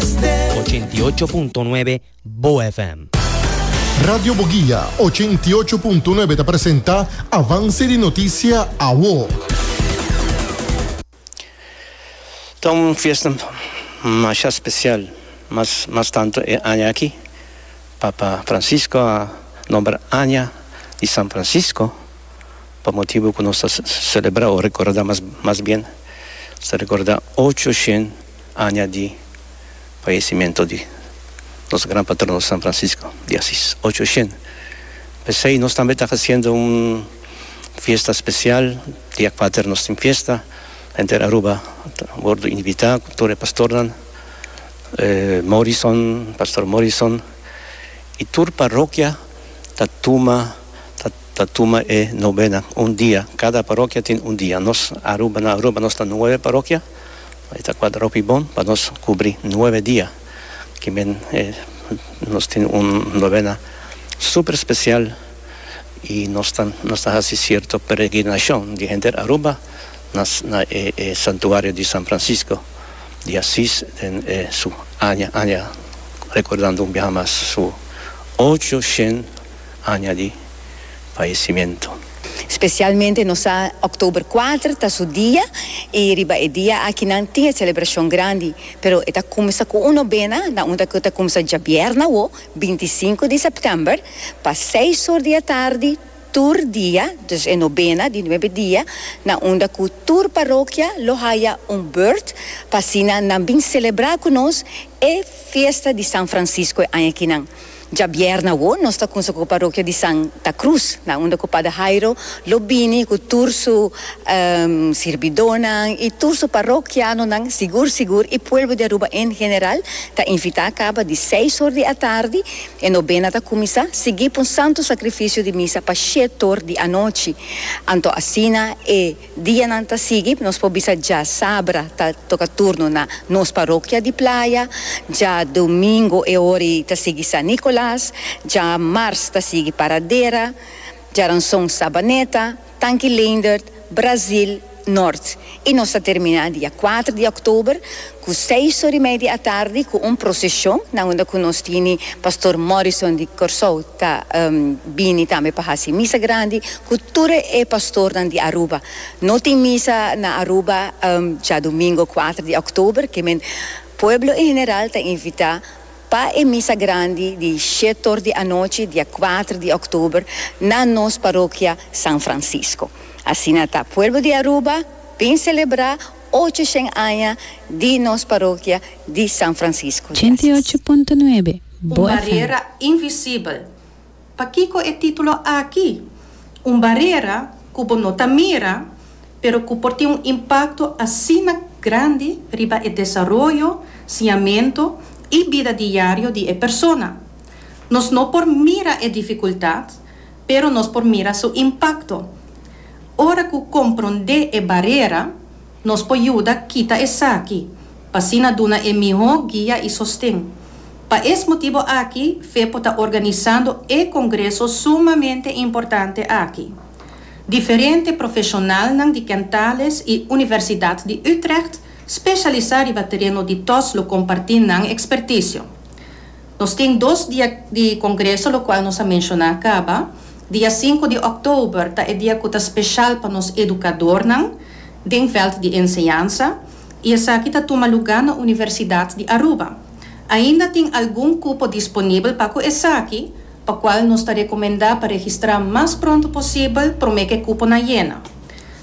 88.9 Bo FM. Radio Boguia, ochenta i ocho punto nuebe ta presenta Avance di Noticia Awo. Ta un fiesta masha special, mas mas tanto e aña aki, Papa Francisco a nombra Aña di San Francisco pa motibu cu nos ta celebra o recorda mas mas bien nos ta recorda ocho shen Aña di fayecimento di nos gran patrono San Francisco di Asis, ocho shen. P'esey nos tambe ta haciendo un fiesta special, dia kuater nos tin fiesta, henter Aruba ta wordo invita, tur e pastornan, Morrison, Pastor Morrison, y tur parokia ta tuma ta ta tuma e novena, un dia, cada parokia tin un dia, nos Aruba na Aruba nos ta nueve parokia, E ta kual ropi bon pa nos kubri nuebe dia. Kimen e nos tin un novena super spesial i nos ta nos ta hasi sierto peregrinashon di henter Aruba na na e e santuario di San Francisco di Asis den e su aña aña rekordando un biaha mas su ocho shen a aña di faesimento. Specialmente nos sa October kuater ta su dia y riba e dia aki nan tin e celebracion grandi pero e ta cuminsa cu un nobena na un cu ta cuminsa djabièrnè awo binti i sinku di September pa seis or di atardi tur dia dus e nobena di nuebe dia na unda cu tur parokia lo haya un beurt pa asina nan bin celebra cu nos e fiesta di San Francisco e aña aki nan Djabièrnè awo nos ta kunsa ku parokia di San ta Krus nan unda ku Pader Hairo lo bini ku tur su sirbidónan i tur su parokianonan sigur sigur i puelbo di Aruba en general ta invitá kaba di seis or di atardi e nobena ta kuminsá sigui pa un santu sakrifisio di misa pa shét or di anochi anto asina e Dianan ta sigui, nos por bisa dja sabra ta toca turno na nos parokia di Playa, dja domingo e hori ta sigui San Nicolas, dja mars ta sigui Paradera, djaranson Sabaneta, Tanki Leendert, Brazil, Noord y nos ta termina dia kuater di oktober. Ku seis or i mei di atardi ku un proseshon na unda ku nos tini Pastor Morrison di Kòrsou ta bini tambe pa hasi misa grandi ku tur e pastornan di Aruba. No tin misa na Aruba djadumingo kuater di òktober, ke men pueblo en general ta invitá pa e misa grandi di shet or di anochi dia kuater di òktober na nos parokia San Francisco. Asina ta pueblo di Aruba bin selebrá. Ocho shen aña di nos parokia di San Francisco. Ochenta i ocho punto nuebe, Un Bo FM. barera invisibel. Pakico e titulo aki? Un barera cu bo no ta mira, pero cu por tin un impacto asina grandi riba e desaroyo, siñamento y bida diario di e persona. Nos no por mira e dificultad, pero nos por mira su impakto. Ora ku komprondé e barera, nos por yuda kita esaki, pa asina duna e mihó guia i sosten. Pa es motibu aki fe por ta organisando e kongreso sumamente importante aki. Diferente profeshonalnan di Kentales i Universidat di Utrecht speshalisá riba tereno di tos lo kompartí nan ekspertisio. Nos tin dos dia di congreso locual nos a menciona caba. Dia sinku di oktober ta e dia cu ta special pa nos educadornan den veld di enseñansa y esaki ta tuma luga na Universidad di Aruba. Ainda tin algun cupo disponibel pa cu esaki, pa cual nos ta recomenda pa registra mas pronto posibel prome cu e cuponan yena.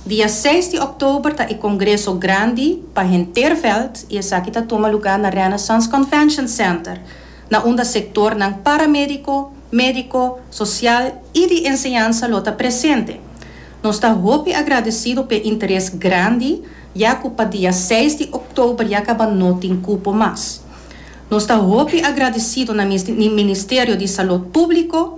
Dia seis di òktober ta e kongreso grandi pa henter vèlt i esaki ta tuma lugá na Renaissance Convention Center, na unda sektornan paramédiko, médiko, sosial i di enseñansa lo ta presente. Nos ta hopi agradesido p'e interes grandi ya ku pa dia seis di òktober ya kaba no tin kupo mas. Nos ta hopi agradesido na Ministerio di Salud Públiko,